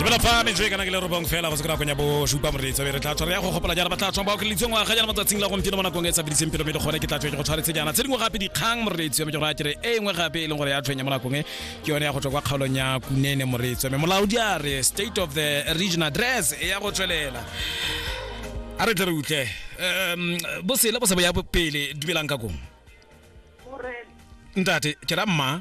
dumela fa metswe kana ke le robong fela go se kona konya bo supa moreetsa be re tla tshwara ya go gopola jana ba tla tshwang ba okelitse ngwaga jana matsatsing la gompieno mo nakong e sa bidiseng pelo mme le gone ke tla tswe ke go tshwaretse jana tse dingwe gape dikgang moreetsi mme ke gore a kere e nngwe gape e leng gore ya tshwenya mo nakong e ke yone ya go tswa kwa kgaolong ya kunene moreetsi mme molaodi a re state of the region address e ya go tswelela a re tle re utlwe um bosele bo se bo ya pele dumelang ka kong ntate ke ra mma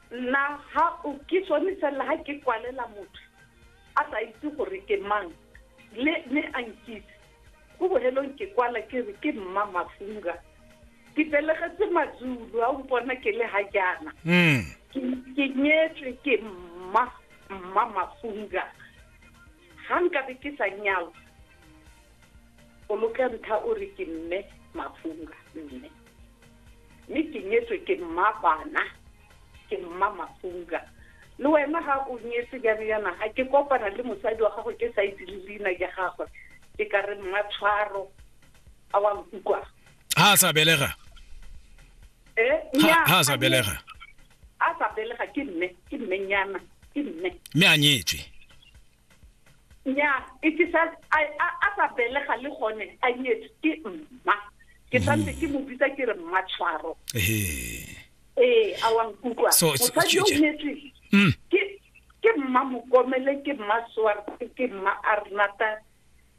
nna ha o ke sone fela ha ke kwalela motho a sa itse gore ke mang le me a nkitse go bohelong ke kwala ke re ke mma mafunga ke belegetse mazulu a mpona ke le ha jaana mm. ke nyetswe ke mma mma mafunga ga nkabe ke sa nyalo o loka ntlha o re ke mme mafunga mme mme ke nyetswe ke mmabana ke mma mafunga le wena ga o nyetse jalo yana ga ke kopana le mosadi wa gago ke sa itse le leina ja gagwe ke ka re mma tshwaro a wa nkukwa ha a sa belega eh ha a sa belega a sa belega ke mme ke mmenyana ke mme mme a nyetswe nya e ke sa a sa belega le gone a nyetse ke mma ke mm. santse ke mo bitsa ke re mma tshwaro ee a wa nkutlwa mosadi yo nyetse mm. ke mma mokomele ke mma swarte ke mma arnata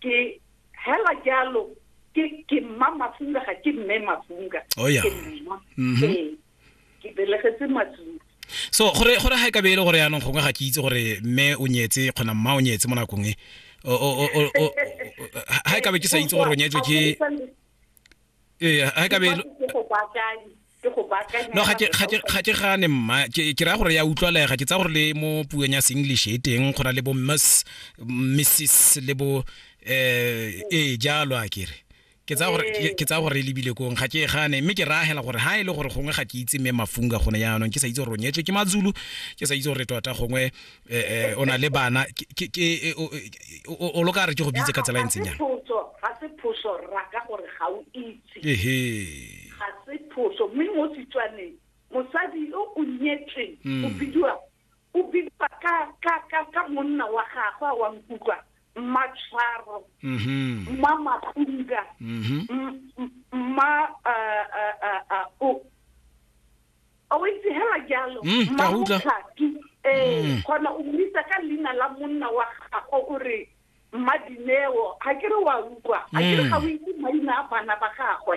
ke hela jalo ke ke mma mafunga ga ke mme mafunga oh, ke mma mm-hmm. ee ke belegetse matlong so gore gore ga e ka be e le gore yaanong gongwe ga ke itse gore mme o nyetse kgona mma o nyetse mo nakong e ga e ka be ke sa itse gore o nyetswe ke ee ga e ka be no ga ke gane mma ke raya gore ya utlwalega ke tsa gore le mo puong ya seenglish e teng go na le bo miss missis le bo um ee jalo a kere ke tsaya gore ke- ke tsaya gore e lebile kong ga ke e gane mme ke raagela gore ha e le gore gongwe ga ke itse mme mafunga gone jaanong ke sa itse gore o nyetswe ke mazulu ke sa itse gore tota gongwe eh, eh, o na le bana Ke- ke- ke- eh, o- o- o- o lo ka re ke go bitse ka tsela e ntseng jang ga se phoso ra ka gore ga o itse ehe ga se phoso mme mo setswaneng mosadi yo o nyetsweng Mm. o bidiwa o bidiwa ka ka ka ka monna wa gagwe a wa nkutlwa mmatshwaro mhm. mma mapunga mhm. mma eh, eh, eh, o a o itse hela jalo mm, mma motlhaki ee mm. gona o mmitsa ka leina la monna wa gagwe o re mma dineo ga ke re wa utlwa ga ke re mm. ga o itse maina a bana ba gagwe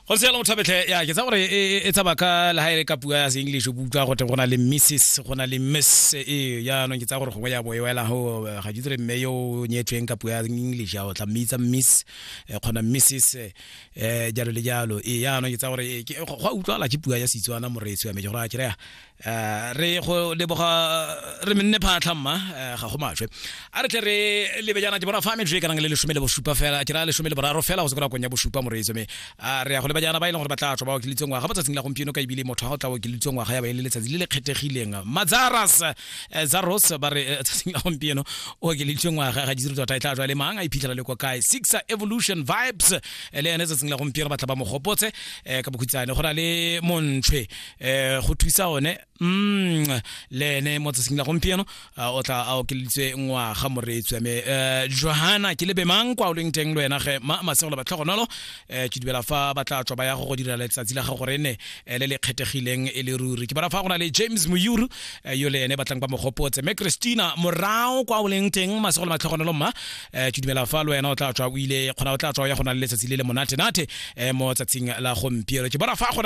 go se yalo thabetlhe ya ke tsa gore e, e, e tsaba ka le haere ka puo ya se-english o utlwa gote go na le misses go na le miss e jaanong ke tsa gore gongwe ya bo e wela go eh, ga ditsere mme yo o nyetsweng ka puo ya english ya o tla mmitsa miss eh, kgona misses um eh, jalo le jalo e jaanong ke tsa gore go a utlwala ke puo ya setswana moreetsi wa me ke gore a kereya Eh, re go leboga re menne phatlha mma eh, ga go maswe a re tle re lebe jaana ke bona fa metswe e ka nang le lesome le bosupa fela ke ra lesome le boraro fela go se kora konya bosupa moreetso me a re ya go leba jaana ba e leng gore ba tla tswa ba okelitseng ngwaga mo tsatsing la gompieno ka ebile motho ga go tla okelitseng ngwaga ya ba e le letsatsi le le kgethegileng mazaras eh, zaros ba re eh, tsatsing la gompieno o okelitseng ngwaga ga ditsiro tota e tla tswa le mang a iphitlhela le kwa kae six evolution vibes eh, le ene tsatsing la gompieno ba tla ba mo gopotse eh, ka bokhutsane go na le montshwe eh go thusa one mm le ene mo tsatsing la gompieno o tla a okeleditswe ngwaga moreetswe me eh, johana ke lebe mang kwa o leng teng lwena ge ma masegolo ba tlhogonolo eh, ke dumela fa ba tla tswa ba ya go go dira letsatsi la gago re ne eh, le le kgethegileng e le ruri ke bona fa go na le james moyuru eh, yo le ene batlang ba mogopotse me christina morao kwa o leng teng masegolo ba tlhogonolo mma eh, ke dumela fa lwena o tla tswa o ile kgona o tla tswa o ya go na le letsatsi le le monate-nate eh, mo tsatsing la gompieno ke bona fa go na